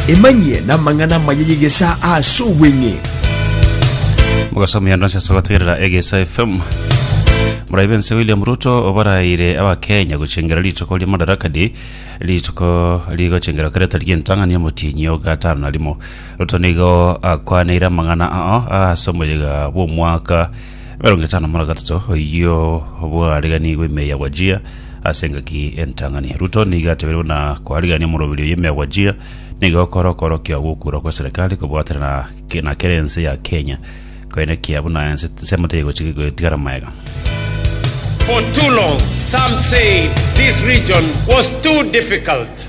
Emanyie namang'ana amaya y'egesaa ase obweng'e. Mogasomia ndonsi ase gotegerera Egesa FM. Morai bense William Ruto obaraire abakenya gochengera rituko ria Madaraka Day rituko rigochengera kereta rientang'ani omotienyi o gatano na rimo. Ruto nigo akwaneire amang'ana ao ase omoyega bw'omwaka Emerongo etano muna gatato oyio bwariganigwe ime ya gwachia ase engaki entang'ani. Ruto nigo atebire buna kwarigania omorobiri oyio ime ya gwachia nigo okore okorokio gokurwa kwa serikali kobwatana na ke- na kera ense ya Kenya koenekia buna ense ensemo teri gochi- gotigara maega. For too long, some said this region was too difficult.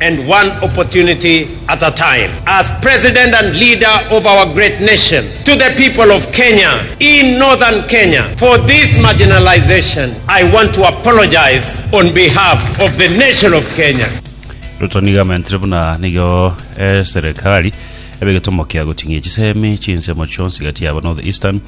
and one opportunity at a time as President and Leader of our great nation to the people of Kenya in Northern Kenya for this marginalization I want to apologize on behalf of the nation of Kenya. Ruto nigo amentire buna nigo eserekari ebe egetomo kia goting'ia chisemi chinsemo chionsi gati yabo North Eastern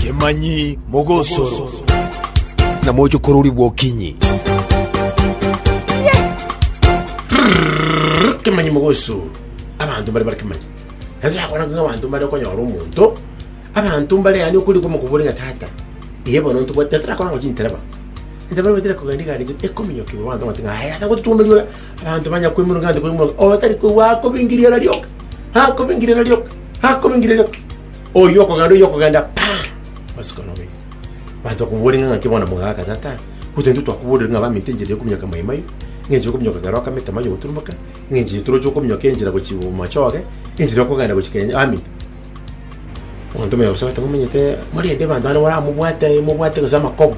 Kemanyi mogosoro, na moche korori bwokinyi. kemanyi mogosoro abanto mbare bare kemanyi naso yakora ng'a abanto mbare okonyora omonto abanto mbare yaani okorikwa omokobori ng'a tata iye bono ntobwate naso rakora ng'a chintereba intereba nibatera kogenda igare eche ekominyoka igoro abanto bamanyete ng'a aye tata gototuomeria ora Abanto banya koimoka gante koimoka, otari koigwa akobingireria rioka, akobingireria rioka, akobingireria rioka. Oyio okogenda, oyio okogenda, pa! Masuko nobeire. Abanto bakomoboria ng'a ng'aki bono mogaka tata, gotoa intwe twakoborire ng'a baminto enchera yokominyoka maimai, ng'enchera yokominyoka kera okamete amaiyo goturumoka, ng'enchera toroche okominyoka enchera gochia bomachoge, enchera yokogenda gochia kenya baminto. Omonto oyomo agosabe ati, Ngomenyete morende abanto bande baramobwate, mobwate gose amakobo.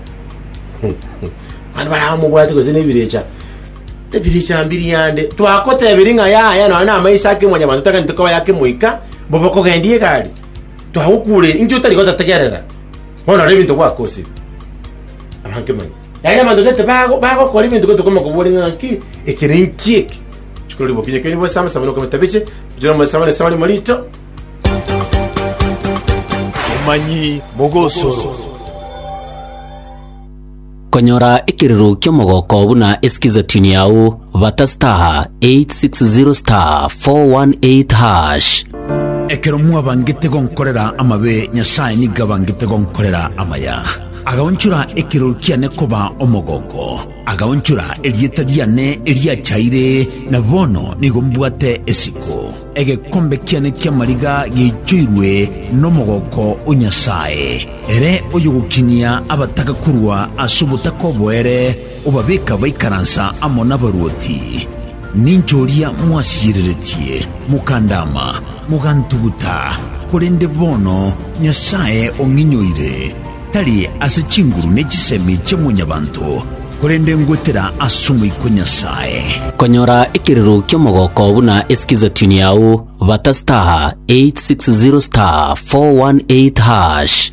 Abande baramobwate gose nebirecha. Ebirecha mbiri yande. Twagotebirie ng'a yaya nonya na amaiso ake mwanyabanto otagete koba yake moika, bobe okogendia egari. Twagokure inki otari gototegerera? Bono rora ebinto gwakosire. Abanto manya. Yaani abanto gete bago- bagokora ebinto gete okoma kobori ng'a ng'aki ekere nki eke chikorori bokinye keri bosama sama nokoma tabiche bujira mosama ne sama limo rito Emanyi mogosoro. Konyora ekiriro ki'omogoko buna esikiza tune yao bata star 860 star 418 hash. Ekero mwabangete gonkorera amabe, Nyasae nigo abangete gonkorera amaya. Agaonchora ekero kiane koba omogooko, agaonchora erieta riane eriachaire, na bono nigo mbwate esiko. Egekombe kiane ki'amariga geichoirwe nomogooko o Nyasae, ere oyogokinia abataka korwa ase obotaka oboere, Obabeka baikaransa amo nabaruoti, ninche oria mwasiyereretie, mokandaama, mogantuguta, korende bono Nyasae ong'inyoire, tari ase chinguru ne chisemi chia mwanyabanto, korende ngwetera as'Omoika o Nyasae. Konyora ekerero ki'omogoko buna es'kizatuni yao, bata star 860 star 418 hash.